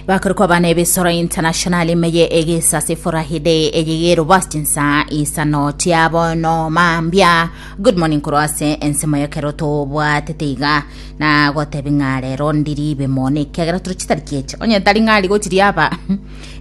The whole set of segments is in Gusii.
bakorwa kwa bana ebisoro international imeye egisa sifurahide eyigero bastinsa isano tiabo no mambia good morning korwa ase ensemo yekero tobwatete iga na gotebi ng'a rero ndiri bemone ekiagera tore chitariki eche onye tari ng'ari gochiri aba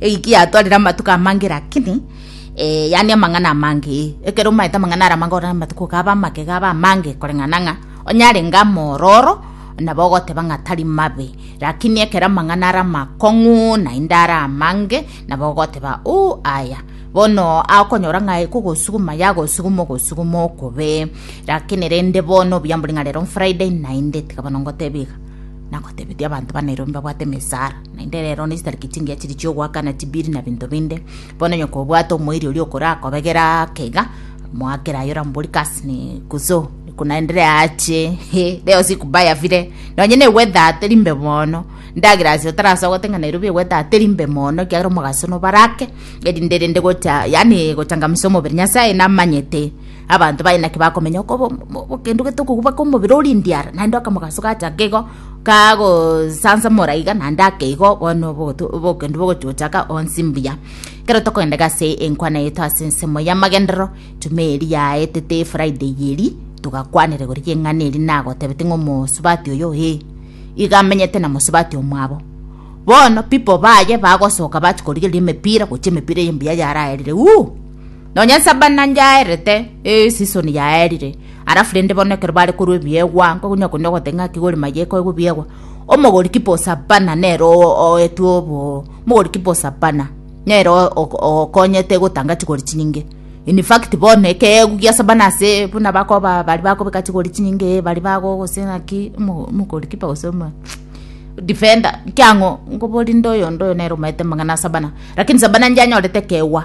egiki yatwarire amatuko amange lakini eh, yani amang'ana amange ekero maete amang'ana ara amange orore amatuko gaba amake gaba amange koreng'ana ng'a onyare ng'a mororo Nabo ogoteba ng'a tari mabe, lakini ekero amang'ana are amakong'u naende are amange, nabo ogoteba, Ooh, aya. Bono akonyora ng'a ekogosuguma yagosuguma ogosuguma okobe. Lakini rende bono obiambori ng'a rero Friday naende tiga bono ngoteba iga nagotebetia abanto ba Nairobi mbabwate emesaara naende rero nesitariki chingiya chiria chi'ogoakana chibiri na binto binde Bono onye kobwate omoiri oria okorakobegera ake iga, moakere aye orambori kasi ni kuso kunaendere ache he leo siku baya vile nonye negweta ateri mbe mono ndagera ase otarasa gotenga Nairobi egweta ateri mbe mono kiagera omogaso nobarake erinde rende gocha yani gochangamisa omobere Nyasaye namanyete Abanto baye naki bakomenya okogenda gotokogubaka omobere oria endiara, naende akamogaso gachake igo, kagosansamora iga naende ake igo, bono obogendo bogochaka onsi mbuya. Ekero tokogenda iga ase enkwana yaito ase ensemo y'amagenderero, juma eria yaetete efriday eria, togakwanera igoro y'eng'ana eria nagotebete ng'a omosubati oyo ee, iga amenyete na mosubati omwabo. Bono people baye bagosoka bachia korigereria emepira, gochia emepira eye mbuya yaraerire uuh. Nonya Sabana yaerete, ee, season yaerire, alafu rende bono ekero bare korwa ebiegwa, nkonya konya ogote ng'a ki gori maye ekoegwa ebiegwa, omogori kipo Sabana nere o- oetwe obo, mogori kipo Sabana nere o- ok- okonyete gotanga chigori chinyinge. In fact bono ekeegwa gia Sabana ase buna bakoba ba- baria bakobeka chigori chinyinge, ee baria bago gose ng'aki, omo- omogori kipa gose omo defender, ekiang'o, nkoboria rinde oyonde oyo nere omaete amang'ana a Sabana, lakini Sabana nyanyorete ekeegwa.